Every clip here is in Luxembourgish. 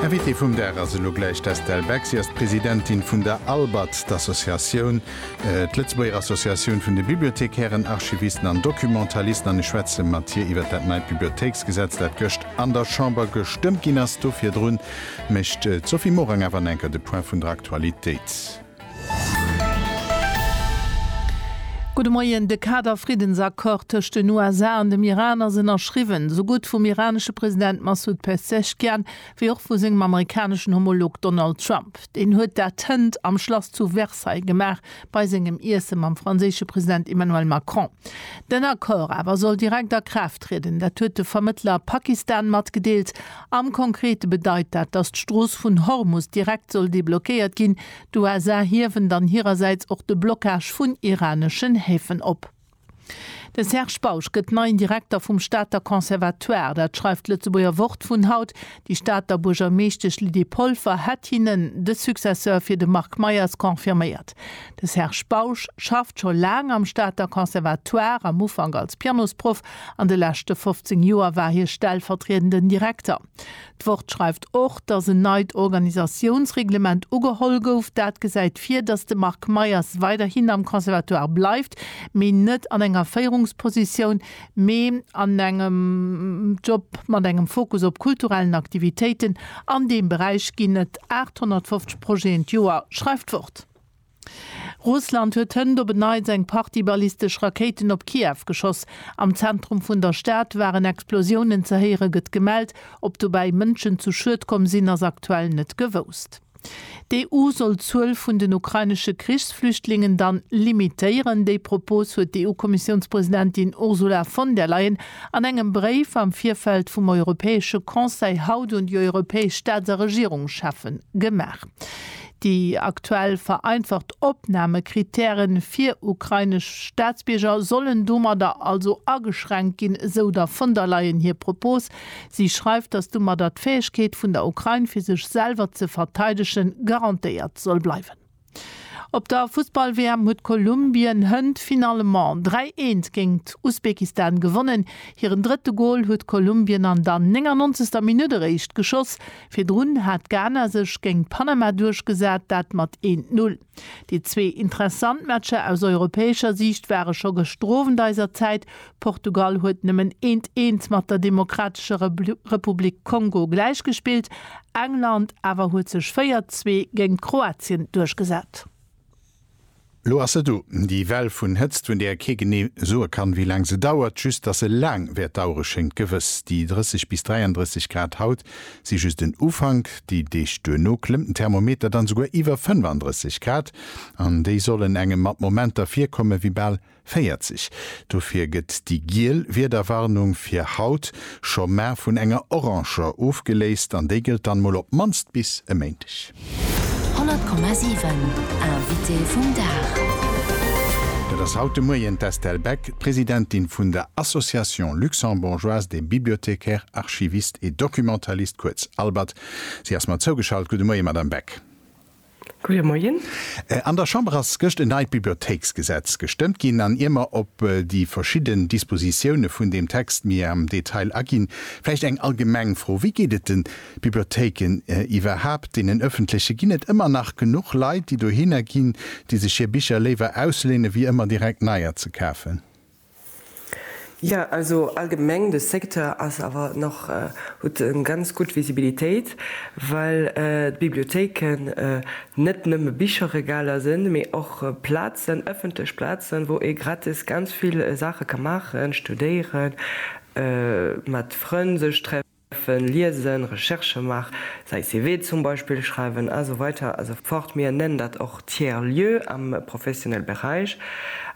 Invitée vum Dag ass elo gläich d'Estelle Beck. Si ass d'Presidentin vun der ALBAT, d'Associatioun, d'Lëtzebuerger Associatioun vun de Bibliothekären, Archivisten an Documentalisten, an ech schwätze mat hir iwwert dat neit Bibliothéiksgesetz, dat gëscht an der Chamber gestëmmt ginn ass. Do virdrun mécht d'Sophie Morang awer nach enker de Point vun der Aktualitéit. Gudde Moien, De Kader-Friddensaccord tëscht den USA an dem Iran ass ënnerschriwwen, esou gutt vum iranesche President Massoud Pezeshkian wéi och vu sengem amerikaneschen Homolog Donald Trump. Deen huet dat hënt am Schlass zu Versailles gemaach, bei sengem Iesse mam franséische President Emmanuel Macron. Den Accord awer soll direkt a Kraaft trieden, dat huet de Vermëttler Pakistan matgedeelt. Am Konkrete bedeit dat, datt d'Strooss vun Hormus direkt soll deblockéiert ginn. D'USA hiewen dann hirersäits och de Blockage vun iraneschen Häfen op. De Serge Bausch gëtt neien Direkter vum Stater Conservatoire. Dat schreift d'Lëtzebuerger Wort vun haut. Déi Stater Buergermeeschtesch Lydie Polfer hätt hinnen de Successeur fir de Marc Meyers confirméiert. De Serge Bausch schafft scho laang am Stater Conservatoire, am Ufank als Pianosproff, An de leschte 15 Joer war hie stellvertriedenden Direkter. D'Wort schreift och, datt en neit Organisatiounsreglement ugeholl gouf. Dat gesäit vir, datt de Marc Meyers weiderhin am Conservatoire bleift, mee net an enger Féierungspositioun, mee an engem Job mat engem Fokus op kulturellen Aktivitéiten. An deem Beräich ginn et 850 Projeten d'Joer, schreift d'Wort. Russland huet hënt op en Neits eng Partie ballistesch Rakéiten op Kiew geschoss. Am Zentrum vun der Stad waren Explosiounen ze héiere gëtt gemellt. Ob dobäi Mënschen zu Schued komm sinn, ass aktuell net gewousst. D'EU soll d'Zuel vun den ukrainesche Krichsflüchtlingen dann limitéieren. Déi Propos huet d'EU-Kommissiounspresidentin Ursula von der Leyen an engem Bréif am Virfeld vum Europäesche Conseil haut un déi europäesch Staats a Regierungscheffen gemaach. Déi aktuell vereinfacht Opnamekrittäre fir ukrainesch Staatsbierger sollen domadder also ageschränkt ginn, esou der von der Leyen hir Propos. Si schreift, datt domadder d'Fäegkeet vun der Ukrain, fir sech selwer ze verteidegen, garantéiert soll bleiwen. Op der Fussball-WM huet Kolumbien hënt finalement 3, 1 géingt Usbekistan gewonnen. Hiren drëtte Gol huet Kolumbien an der 99. Minutt eréischt geschoss. Virdrun hat Ghana sech géint Panama duerchgesat, dat mat 1, 0. Déi zwee interessant Matcher aus europäescher Siicht ware scho gëschter Owend eiser Zäit. Portugal huet nëmmen eent 1 mat der Demokratescher Republik Kongo gläichgespillt, England awer huet sech 4, 2 géint Kroatien duerchgesat. Lo ass se do, déi Well vun Hëtzt, vun där ee kee genee soe kann, wéi laang se dauert. Just dass se laang wäert dauere schéngt gewëss. Déi 30 bis 33 Grad haut si just den Ufank. Déi Deeg duerno klëmmt den Thermometer dann esouguer iwwer 35 Grad an déi sollen engem mat Momenter virkomme wéi bal 40, dofir gëtt déi giel Wiederwarnung fir haut scho mar vun enger oranger ofgeléist an déi gëllt dann mol op d'mannst bis e Méindeg. 100,7 Invité vum Dag. Dat ass haut de Moien d'Estelle Beck, d'Presidentin vun der Association Luxembourgeoise des Bibliothécaires, Archivistes et Documentalistes, kuerz ALBAD. Si ass mer zougeschalt. Gudde Moie, Madame Beck. Goeie Moien. An der Chamber ass gëscht en neit Bibliothéiksgesetz gestëmmt ginn an ier mer op déi verschidden Dispositioune vun deem Text méi am Detail aginn, vläicht eng allgemeng Fro, Wéi geet et den Bibliothéiken iwwerhaapt, deenen ëffentlechen? Ginn et ëmmer nach genuch Leit, déi dohinner ginn, déi sech hir Bicher léiwer ausléinen, wéi ëmmer direkt neier ze kafen? Jo, also allgemeng de Secteur ass awer nach, huet eng ganz gutt Visibilitéit, well d'Bibliothéiken net nëmme Bicherregaler sinn, mee och Plazen, ëffentlech Plazen, wou ee gratis ganz vill Saache ka maachen, studéieren, mat Frënn sech treffen, Schreiwen, liesen, Recherche maachen, säi CV zum Beispill schreiwen a sou weider a sou fort. Mir nennen dat och Tiers lieu am professionelle Beräich.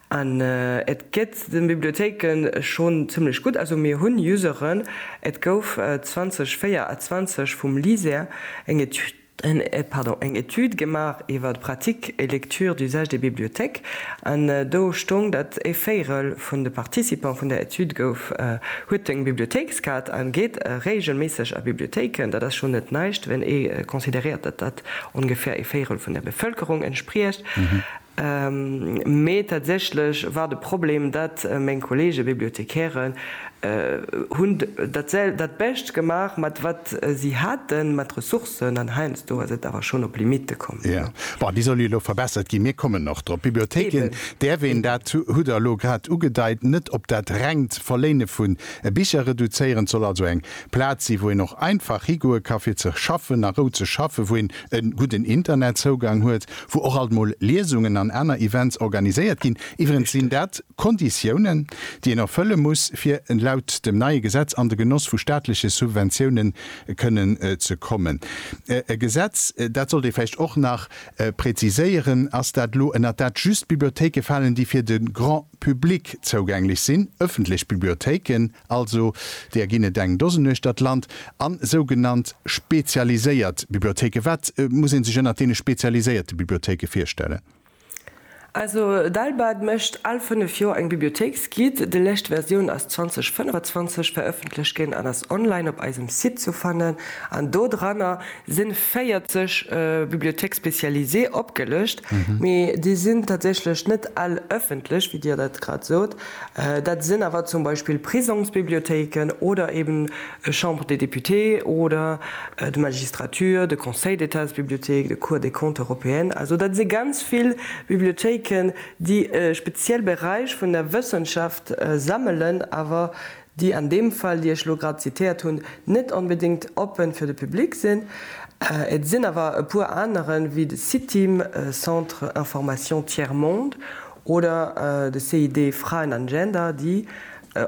An et geet de Bibliothéike schonn zimmlech gutt. Also mir hunn Useren. Et gouf 2024 vum LISER eng Etüd, eng Etüd gemaach iwwer Pratique et lecture d'usage des bibliothèques an do stoung, datt ee Véirel vun de Participant vun där Etüd gouf, huet eng Bibliothéikskaart a geet reegelméisseg a Bibliothéiken. Dat ass schonn net näischt, wann ee consideréiert, datt dat ongefähr ee Véirel vun der Bevëlkerung entspriecht. Mee tatsächlech war de Problem, dat meng Kollege Bibliothekären hun dat Bescht gemaach mat wat si haten, mat Ressourcen, an heiansdo ass et awer schon op Limite komm. Jo, bon, déi soll jo elo verbessert ginn, mir kommen och drop. Bibliothéken däerf een, dat hutt Der elo grad ugedeit, net op dat rengt Verléine vu Bicher reduzéieren. Et soll also eng Plaz sinn, wou een och einfach higoe ka fir ze schaffen, a Rou ze schaffen, wou een e gudden Internetzougang huet, wou och alt mol Liesungen an aner Events organiséiert ginn. Iwwerens sinn dat Konditiounen, déi een erfëlle muss, fir laut dem neie Gesetz an de Genoss vu staatleche Subventiounen kënnen ze kommen. E Gesetz, dat sollt ee vläicht och nach präziséieren, ass dat elo, ënnert dat just Bibliothéike falen, déi fir de Grand public zougänglech sinn, ëffentlech Bibliothéiken, Also deeër ginn et eng Dosen uecht der d'Land, a sougenannt spezialiséiert Bibliothéike. Wat muss ee sech ënnert deene spezialiséierte Bibliothéike virstellen? Also d'ALBAD mécht al fënnef Joer eng Bibliothéiksguide. Déi lescht Versioun ass 2025 verëffentlech ginn an ass online op eisem Site zu fannen. An do dranner si 40 Bibliothéques spécialisées opgelëscht, mee déi sinn tatsächlech net all ëffentlech, wéi Dir dat grad sot. Dat sinn awer zum Beispill Prisongsbibliothéiken oder eben e Chambre des Députés oder d'Magistrature, de Conseil d'Étatsbibliothéik, de Cour des Comptes européenne. Also dat si ganz vill Bibliothéiken, déi e speziell Beräich vun der Wëssenschaft sammelen, awer déi an deem Fall, déi ech elo grad zitéiert hunn, net onbedéngt oppen fir de Public sinn. Et sinn awer e puer aneren, wéi de CITIM, Centre Information Tiers Monde, oder de CID Fraen an Gender, déi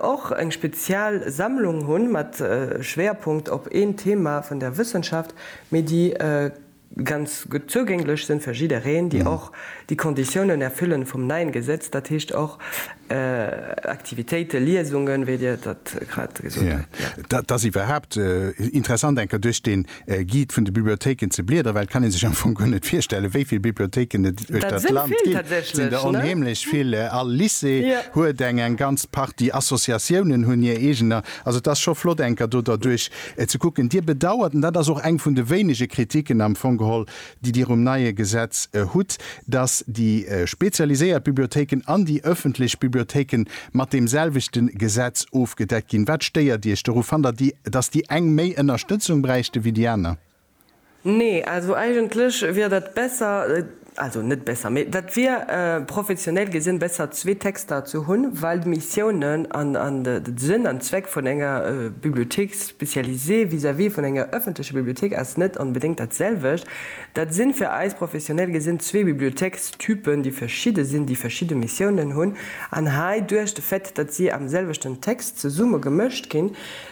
och eng spezial Sammlung hunn, mat Schwéierpunkt op een Thema vun der Wëssenschaft, mee déi ganz gutt zougänglech sinn fir jiddereen, déi och déi Konditiounen erfüllen vum neien Gesetz, dat heescht och Aktivitéiten, Liesungen, wéi Dir dat grad gesot hutt. Jo, et ass iwwerhaapt interessant eng Kéier duerch den Guide vun de Bibliothéiken ze bliederen, well et kann ee sech am Fong guer net virstellen, wéi vill Bibliothéiken et duerch dat Land ginn. Dat sinn der onheemlech vill. All Lycée huet eng, eng ganz Partie Associatiounen hunn hir eegener. Also et ass scho flott eng Kéier do derduerch Ze kucken. Dir bedauert, an dat ass och eng vun de wéinege Kritiken am Fong geholl, déi Dir um neie Gesetz hutt, dass déi spezialiséiert Bibliothéiken an déi öffentlech Bibliothéike mat deemselwechte Gesetz ofgedeckt ginn. Wat stéiert Iech doru? Fannt Der, dass déi eng méi Ënnerstëtzung bräichte wéi déi aner? Nee, also eigentlech wier dat besser, also net besser, mee dat wier professioneel gesinn besser zwee Texter ze hunn, well d'Missiounen an de Sënn an Zweck vun enger Bibliothèque spécialisée vis-à-vis vun enger ëffentlecher Bibliothéik ass net onbedéngt dat selwecht. Dat sinn fir eis professioneel gesinn zwee Bibliothéikstypen, déi verschidde sinn, déi verschidde Missiounen hunn an hei duerch de Fait, datt si am selwechten Text zesumme gemëscht ginn,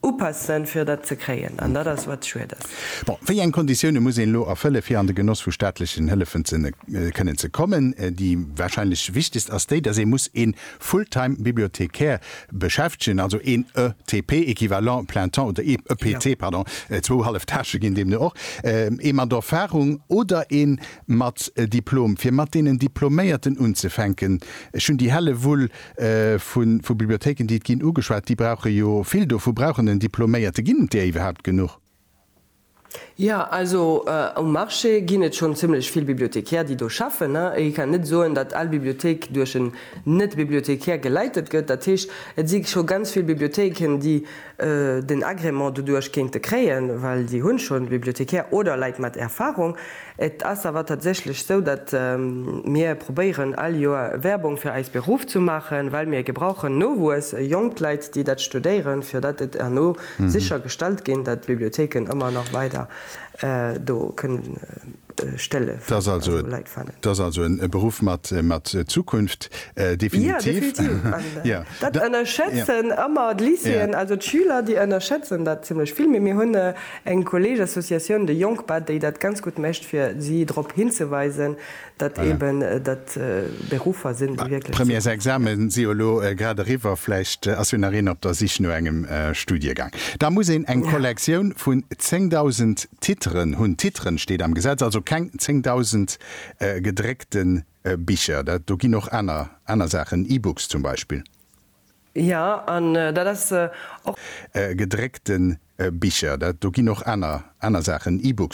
Upassen, fir dat ze kréien. An dat ass, wat schued ass. Bon, wéi eng Konditioune muss een elo erfëllen, fir an de Genoss vu staatlechen Hëllefen kënnen ze kommen? Déi warscheinlech wichtegst ass déi, dass ee muss ee Full-time-Bibliothecaire beschäftegen, also een ETP, Equivalent plein temps, oder ee EPT, pardon, zwou hallef Tâchë ginn deemno och, ee mat Erfarung oder ee mat Diplom, fir mat deenen Diploméierten unzefänken. Ech hunn déi helle Wull, Vu Bibliothéiken, déi et ginn, ugeschwat, déi brauche jo vill dovu brauchen en Diploméierte. Ginn et där iwwerhaupt genuch? Jo, also um Marché ginn et schonn zimmlech vill Bibliothecaires, déi do schaffen. Ee kann net soen, datt all Bibliothéik duerch en Net-Bibliothecaire geleitet gëtt. Dat heescht, et si scho ganz vill Bibliothéiken, déi den Agrément doduerch kéinte kréien, well si hunn schonn Bibliothecaire oder Leit mat Erfahrung. Et ass awer tatsächlech esou, datt mir probéieren all Joer Werbung fir eis Beruff ze maachen, well mir gebrauchen Nowuess, jonk Leit, déi dat studéieren, fir datt et herno sicher gestallt ginn, datt d'Bibliothéiken ëmmer nach weider do kënnen. stëlle Leit fannen. Et ass also e Beruff mat Zukunft, definitiv. Jo, definitiv. Dat ënnerschätzen ëmmer d'Lycéeën, also d'Schüler, déi ënnerschätzen dat zimlech vill. Mee mir hunn eng Kolleegesassociatioun, de Jongpa, déi dat ganz gutt mécht, fir si drop hinzeweisen, datt eeben dat Beruffer sinn, déi wierklech d'Zukunft sinn. D'Premièresexame si jo elo grad eriwwer. Vläicht ass jo nach een op der Sich no engem Studiegang. Da muss een eng Kollektioun vun 10.000. Titren hunn. Titren steet am Gesetz, also keng 10.000 gedréckte Bicher. Dat do ginn och aner, aner Saachen, E-Books zum Beispill. Jo, an dat ass och. Gedréckte Bicher. Dat do ginn och aner, aner Saachen, E-Books.